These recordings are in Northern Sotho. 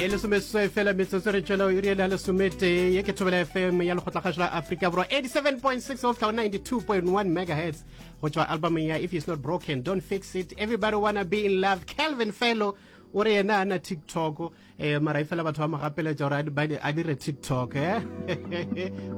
ye lesomeseswai fela metsotso re tšwela iri e le ya lesometee ye ke thobela fm ya lekgotlakgašo la aforika borwa 87.6 of 92.1 megahertz go tšwa albumeng ya if is not broken don't fix it everybody wanna be in love calvin felo o re yena ana tiktok um eh, mara e fela batho ba mo gapeletša gore a dire tiktok e eh?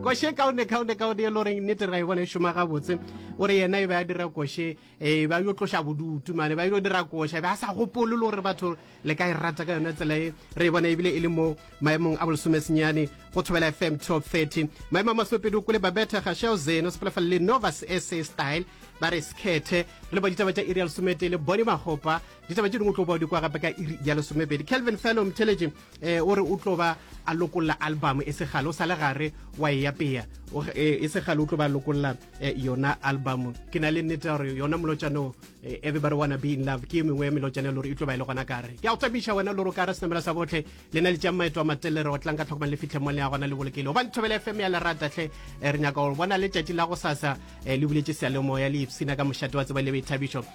koshe kaone kaone kaone e le goreng nnete ra e bona e šoma gabotse o re yena e be a dira koshe ee ba yo tloša bodutu mane ba yo dira koša be a sa gopolo le gore batho le ka e rata ka yone tsela e re e bona ebile e le mo maemong a bolosomesenyane go thobela fm 1230 maemo a masopedi o kole babetha gašao zeno sepelafale le novas sa style ba re sekhethe re ba ditaba tša iri ya lesometee le bone magopa ditaba tše dingwe tlo bao di kwa gape ka iri ya lesomepedi kelvin fellow mtheletše Ee, o re o tlo ba a lokolla album e segale o sa le gare wa e yapeya e segale o tlo ba lokolla yona album ke na le nnete gore yona molotšano everybody wanna be in love ke e mengwe ya melotšana lore e tlo ba e le gona kare ke a go tsebiša wena lore o ka re senamela sa botlhe le na le tšang maeto a matelere o tlang ka tlhokomang le fitlhe mo le ya gona le bolokele gobane thobele fm ya lerata tlhe re nyaka go bona letšatši la go sasa le buletše sealemoya le ipsina ka mošate wa tseba le boithabišo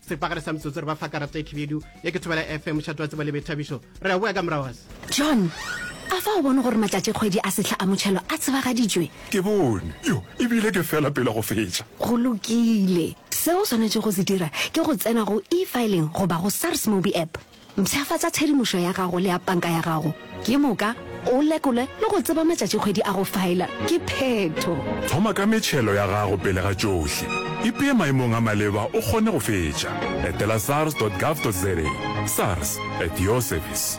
sepagare sa metsotso re ba fa karata e khibidu ye ke thobela fm mošhato wa tsebo le boithabišo re a boa ka morago gase john a fa o bone gore matšatši kgwedi a sehla a motšhelo a tsebagaditšwe ke bone yo ebile ke fela pele go fetša go lokile seo o swanetše go se dira ke go tsena go e-filing goba go sars mobi app Mpshafatša tshedimošo ya gago le ya panka ya gago ke moka, o lekole le go tseba matšatšikgwedi a go faela ke phetho. Thoma ka metšhelo ya gago pele ga tšohle. Ipee maemong a maleba o kgone go fetša. Etela sars dot gov dot za, sars, at your service.